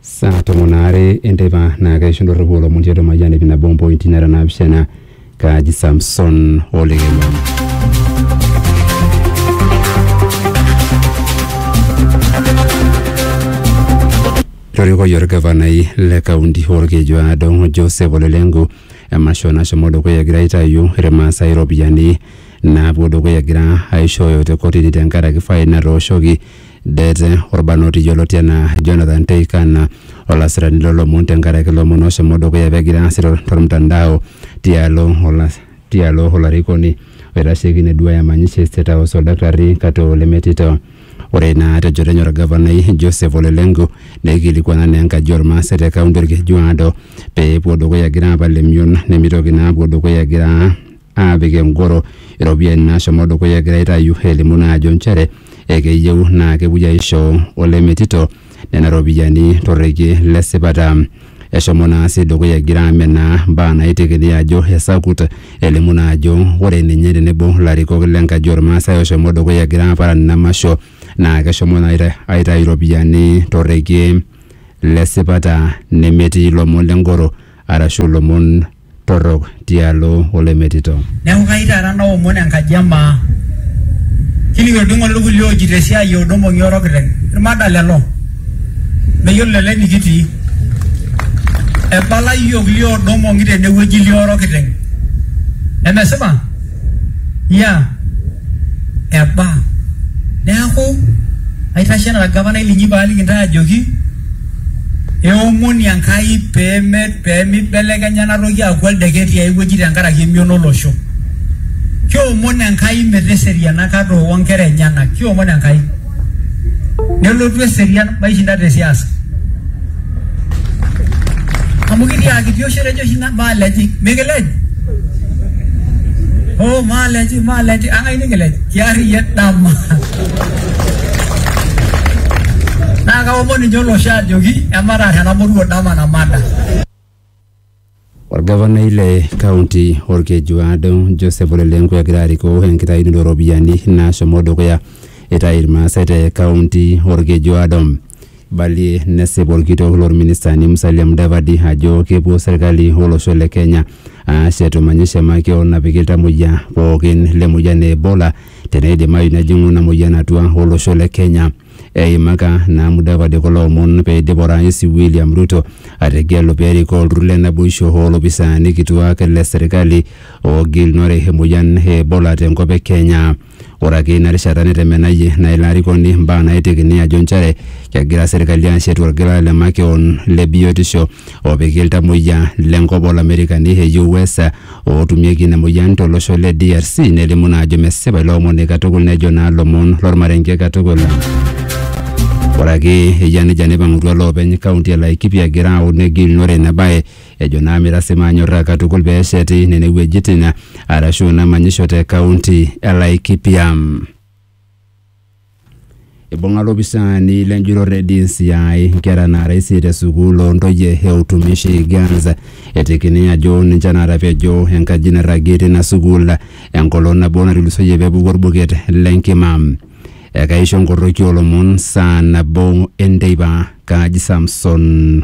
saa tomon aare enteipa naa keisho ndorropu olomon tiatua Mayian ip nabo ompointi nara naapishana kaaji Samson Olekema. Torikoki orgavanai le kaunti Olkeju Aado Joseph Ole Lenku emasho nashomo dukuya egira aitayu irmaasai iropiyiani naapuo dukuya egira aishooyo te kotini tenkaraki fain natooshoki Det, Olbarnoti yioloti anaa Jonathan Teikan, olasirani loo lomon tenkaraki lomon ooshomo dukuya pegira aasir tolmtandao tialo olas tialo olarikoni oitasheki ine duaaya emanyisho e State House Oldaktarri Katoo Lemetito. Ore naa te njoto enye Olgavanai Joseph Ole Lenku neikilikuana naa enkaji oo Lmaasai te kaunti Olkejuado pee epuo dukuya egira aapal emion nemeitoki naa apuo dukuya egira aapik engoro iropiyiani naashomo dukuya egira aitayu elimu naa ajo nchere ekeyieu naa kepuoi aisho olemetito nena ropiyiani torrekie le sipata. Eshomo naa sii dukuya egira amenaa mbaa naitekini ajo esakut elimu naa ajo ore ninye tenebo ilarikok le nkaji ormaasai oshomo dukuya egira aaparan ina masho naa keshomo naa aita- aitayu iropiyiani torrekie le sipata nemetii ilomon le ngoro arashu ilomon torrok tialo oloimetito. Neaku kayieu taata naomon enkaji e maa. Kining olbing'oti ilkulie oojito esiai o Domong'i Oro Kiteng. Ilmada lelo. Meyiolo lelo enikitii. Ebala iyiook lioo Domong'i tene wueji lioo Oro Kiteng. Nemesipa? Iya. Eba. Neaku aitashe anaa olgavanai linyi paaliki intae ajoki. Eomoni Enkai pee meibelekenya ena toki aaku oldeket tiai wueji tenkaraki emion olosho. Kiomon Enkai meteseriana kata o nkera enyena. Kiomon Enkai. Nelotu eserian maishinda te siasa. Amu kitiaaki tioshi etejo oshi ina maalejik mikilej. Hoo maalejik maalejik ang'ai nikilej? Kiarriyiet dama. naa kaomon ninche olosho ajoki emataar ena moruo dama namada. Orgavanai le kaunti Olkejuado Joseph Ole Lenku egira arikoo enkitayunoto oo ropiyiani naashomo dukuya eitayu Irmaasai te kaunti Olkejuado. Eibalie nesip olkitok loo ministani Musalia Mudavadi ajo kepuo serkali o losho le Kenya aashet manyisho e makeon napiki iltamuoyia pookin le moyian e Ebola teneidimayu nejing'u ina moyian atua olosho le Kenya. Eimaka naa Mudavadi kulo omon peidip Orais William Ruto ategelu perikoo olturur le naboisho oo lopisaani kituak le serikali oogilunore emoyian e Ebola te nkop e Kenya. Ore ake ina rishata netemenayie naa ilo arikoni mbaa naaitekini ajo nchere kegira serikali ashetu olgela le makeon le biotisho opiki iltamoyia le nkop oo lamerikani e US ootumieki ina moyian to losho le DRC nelimu naa ajo mesipa ilo omoni katukul nejo naa lomon lormarenke katukul. Ore ake eyia nejia neipang'utua loopeny kaunti e Laikipia egira aun negilunore ina bae ejo naa meirasi maanyorraa katukul pee esheti nene wuejitin arashu ina manyisho te kaunti e Laikipia. Ibung'a lopisaani lenjurore DCI nkera naara isiet e sukuul oo ntoyie e Utumishi Girls etekini ajo ninche naatapejo enkaji nairragie tina sukuul enkolong nabo natulusoyie pepuku orbuket lenkima. Ekaisho nkorroki oolomon saa nabo enteipa. Kaji Samson